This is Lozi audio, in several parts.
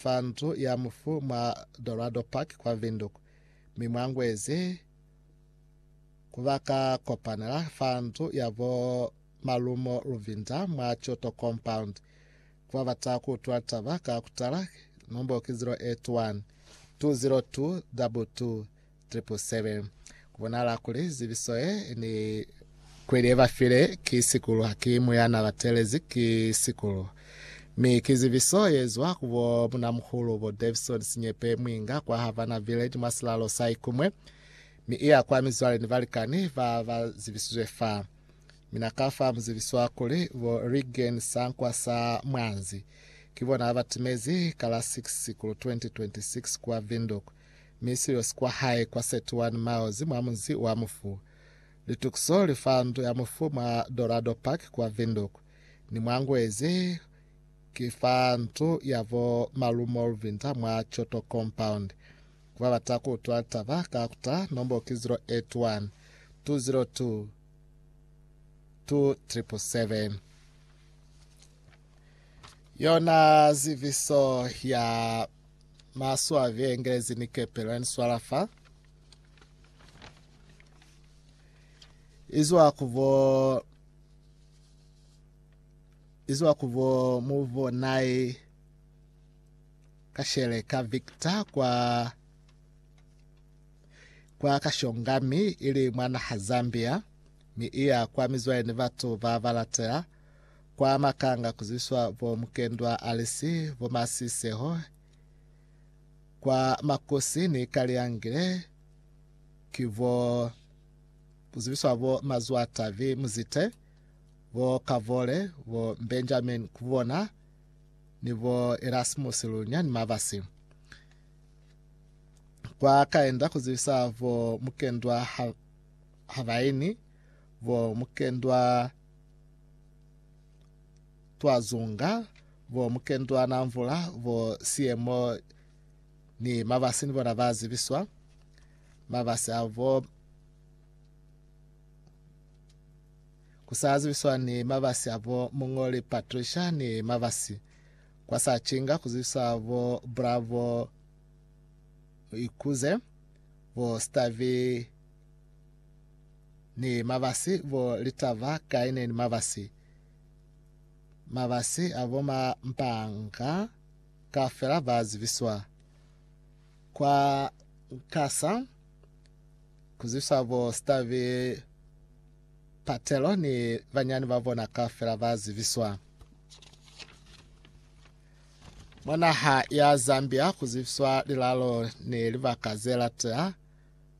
fa ndu ya mufu mwa Dorado Park kwa Windhoek, mi mwa Ngwezi ku ba ka kopanela fa ndu ya bo Malumo Luvinda mwa Kyoto Compound. Ku ba bata ku utula litaba ka kutala, nombo ki 081 202 22 777. Ku bonahala kuli zibiso ye ni kweli ye ba file ki Sikulu, haki mu ya na ba teelezi ki Sikulu, mi ki zibiso ye zwa ku bo munamuhulu bo Davison Sinyepe Mwinga kwa Havana Village mwa silalo sa Ikumwe, mi i ya kwa mizwale ni balikani ba ba zibisizwe fa. Mina ka fa mu zibiswa kuli bo Reagan Sankwa sa Mwanzi, ki bona ba timezi ka la 6 Sikulu 2026 kwa Windhoek. mi siyo si kwa hae kwa 31 miles mwa munzi wa mufu. Litukiso li fa ndu ya mufu mwa Dorado Park kwa Windhoek, ni mwa ngwezi ki fa ndu ya bo Malu Molvinda mwa Choto Compound. Ku ba bata ku utwa litaba ka ku ta nombo ki 081 202 2777. Yona ziviso ya Maswabi, Engelezi ni kepe la ni swala fa. Izwa ku bo izwa ku bo mu bonai ka shele ka Victor kwa kwa Kashongami ili mwa naha Zambia mi iya kwa mizwale ni batu ba balatela Kwa Makanga ku zwiswa bo Mukendwa Alice, bo Masiseho, kwa Makosi ni Kaliyangile ki bo ku zwiswa bo Mazwatavi Muzite, bo Kavole, bo Benjamin Kubona ni bo Erasmus Lunya ni Mabasi. Kwa Kaenda ku zwisa bo Mukendwa Habaini, bo Mukendwa Twazunga, bo Mukendwana Mvula, bo Siemo ni Mabasi ni bona ba zibiswa. Mabasi a bo kusa zibiswa ni mabasi a bo Mungoli Patricia ni mabasi kwa sa chinga kuzibiswa bo Bravo Ikuze bo Stavi Ni mabasi bo litaba kai ne ni mabasi. Mabasi a bo ma mpanga kaufela ba zibiswa. Kwa Nkasa ku zibiswa bo Stavi Patelo ni banyani ba bona kaufela ba zibiswa. Mwa naha ya Zambia ku zibiswa lilalo ni libaka ze latea.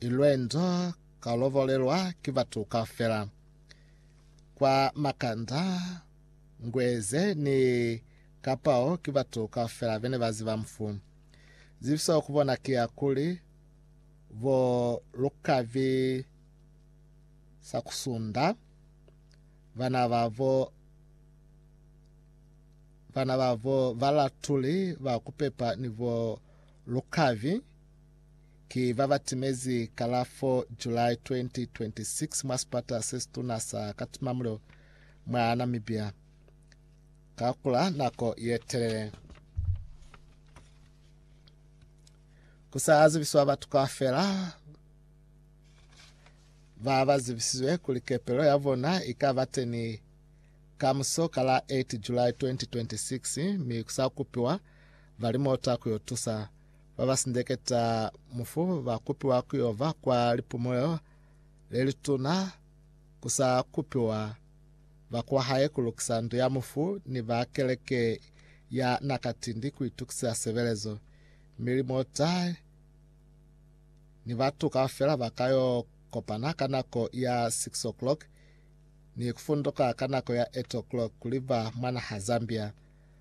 I lwendo ka lovolelwa ki batu kaufela. Kwa makanda, Ngweze ni Kapao ki batu kaufela bene ba ziba mufu. Zibiso ku bona ki ya kuli, Bo Lukabi Sakusunda, bana babo bana babo Balatuli ba Kupepa ni bo Lukabi ki ba ba timezi ka la 4 July 2026 mwa sipata se situna sa Katumamulilo mwa Namibia ka kula nako ye telele. Ku sa zibiswa batu kaufela ba ba zibisizwe kuli kepelo ya bona i ka ba teni ka muso ka la 8 July 2026 mi ku sa kupiwa balimota ku yo tusa. ba ba sindeketa mufu ba kupiwa ku yo ba kwa lipumulelo le lituna ku sa kupiwa ba kwa hae ku lukisa ndu ya mufu ni ba keleke ya na katindi ku itukisisa sebelezo. Mi limota ni batu kaufela ba ka yo kopana ka nako ya 6 o'clock ni ku funduka ka nako ya 8 o'clock kuli ba mwana ha Zambia.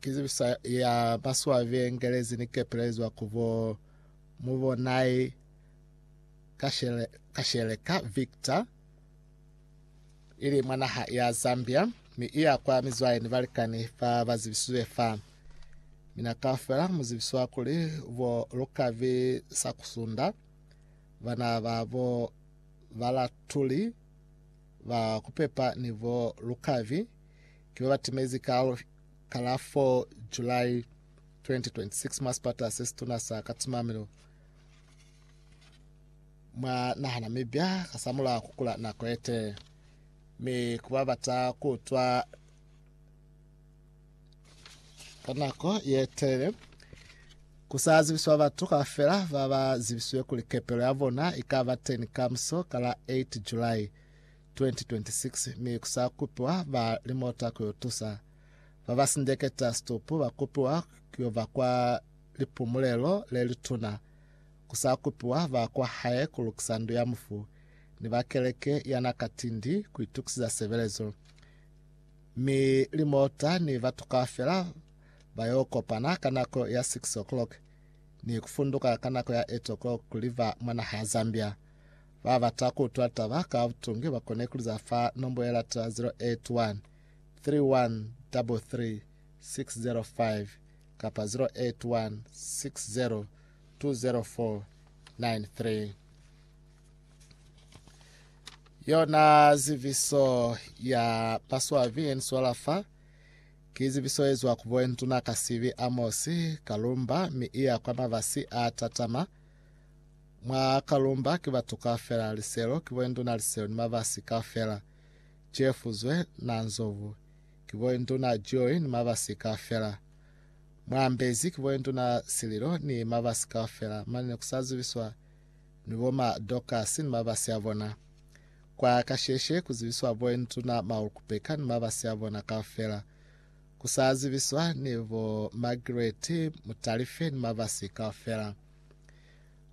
Ki zibiso ya maswabi ye ngelezi ni kepelezwa ku bo Mubonai Kasheleka Victor, ili mwa naha ya Zambia, mi iya kwa mizwale ni balikani ba ba zibisizwe fa. Mina kaufela mu zibiswa kuli bo Lukavi Sakusunda, bana ba bo Balatuli ba kupepa ni bo Lukavi, ki ba ba timezi kalo ka la 4 July 2026 mwa sipata se situna sa Katsumamilo mwa naha Namibia kasamulaho ku kula nako yete mi ku ba bata ku utwa ka nako yetelele ku sa zibiswa batu kaufela ba ba zibisiwe kuli kepelo ya bona i ka ba teni kamuso ka la 8 July 2026 mi ku sa kupiwa ba limota ku yo tusa ba ba sindeketa situpu ba kupiwa ku yo ba kwa lipumulelo le lituna. Ku sa kupiwa ba kwa hae ku lukisa ndu ya mufu ni ba keleke ya na ka tindi ku itukisiza sebelezo. Mi limota ni batu kaufela ba yo kopana ka nako ya 6:00 ni ku funduka ka nako ya 8:00 ku liva mwa naha ya Zambia. Ba bata ku utwa taba ka butungi ba kona ku liza fa nombo ye lata 081 3133 605 kapa 081 60 20493. Yona ziviso ya Paswavi ye ni swala fa ki ziviso ye zwa ku bo Nduna Kasivi Amosi Kalumba mi i ya kwa mabasi a tatama. Mwa Kalumba ki batu kaufela, liselo, ki boinduna liselo ni mabasi kaufela. Cefuzwe na Nzovu, ki boinduna Joy ni mabasi kaufela. Mwa Mbezi ki boinduna Sililo ni mabasi kaufela, mane ne ku sa zibiswa ni bo ma Dorcas ni mabasi a bona. Kwa kasheshe ku zibiswa boinduna Maulukupeka ni mabasi a bona kaufela. Ku sa zibiswa ni bo Margaret Mutalife ni mabasi kaufela.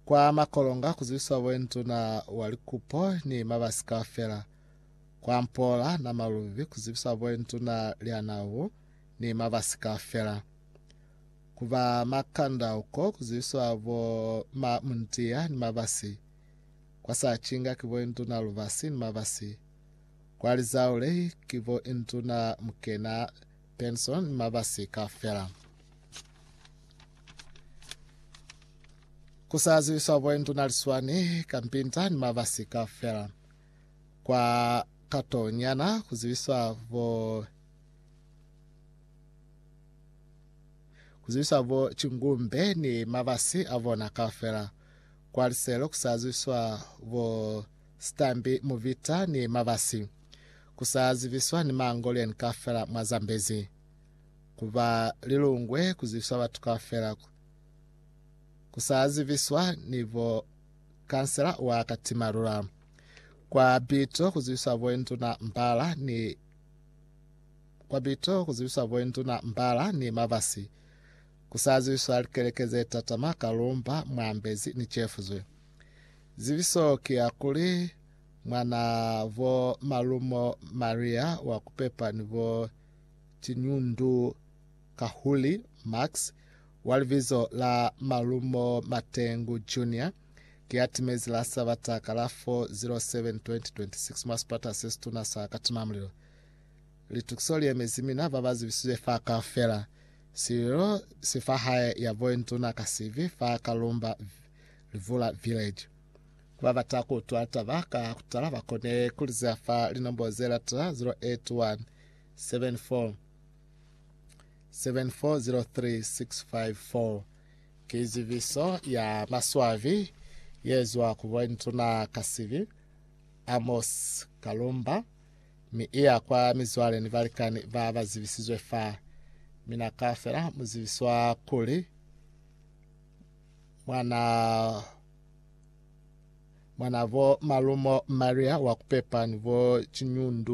Kwa makolonga kuzibiswa boenduna wa likupo ni mabasi kaufela. Kwa mpoola na malubi kuzibiswa boenduna lya nawu ni mabasi kaufela. Ku ba makanda uko kuzibiswa bo ma mundiya ni mabasi. Kwa sacinga ki boenduna lubasi ni mabasi. Kwa lizaulei ki boenduna mukena Benson ni mabasi kaufela. Ku sa ziwiswa bo Nduna Liswani ka Mpinta ni mabasi kaufela. Kwa kato nyana ku ziwiswa bo ku ziwiswa bo Chingumbe ni mabasi a bona kaufela. Kwa liselo ku sa ziwiswa bo Stambi Muvita ni mabasi. ku sa zibiswa ni Mangolian kaufela mwa Zambezi, ku ba lilungwe ku zibiswa batu kaufela, ku sa zibiswa ni bo kansela wa Katimalula, kwa Bito ku zibiswa bo Induna Mbala ni kwa Bito ku zibiswa bo Induna Mbala ni Mabasi, ku sa zibiswa likeleke ze tatama Kalumba, Mwambezi ni Chefuzwe. Zibiso ki ya kuli mwana bo malumo Maria wa kupepa ni bo tiñundu kahuli Max, wa libizo la malumo Matengu Junior, ki ya timezi la Sabata ka la 4 07 2026 mwa sipata se situna sa Katimamulilo. Litukiso li emezi mina ba ba zibisizwe fa kaufela. Sililo si fa hae ya bointuna Kasivi fa Kalumba Livula Village. Kubabata kuutwa taba ka kutala bakone kuliza fa linombo zelata 081 74 7403654. Ki zibiso ya maswabi yezwa ku Bontuna Kasibi, Amos Kalumba, mi iya kwa mizwale ni balikani ba ba zibisizwe fa. Mina kaufela muzibiswa kuli mwana Mwanabo malumo Maria wa kupepa ni bo ciñundu.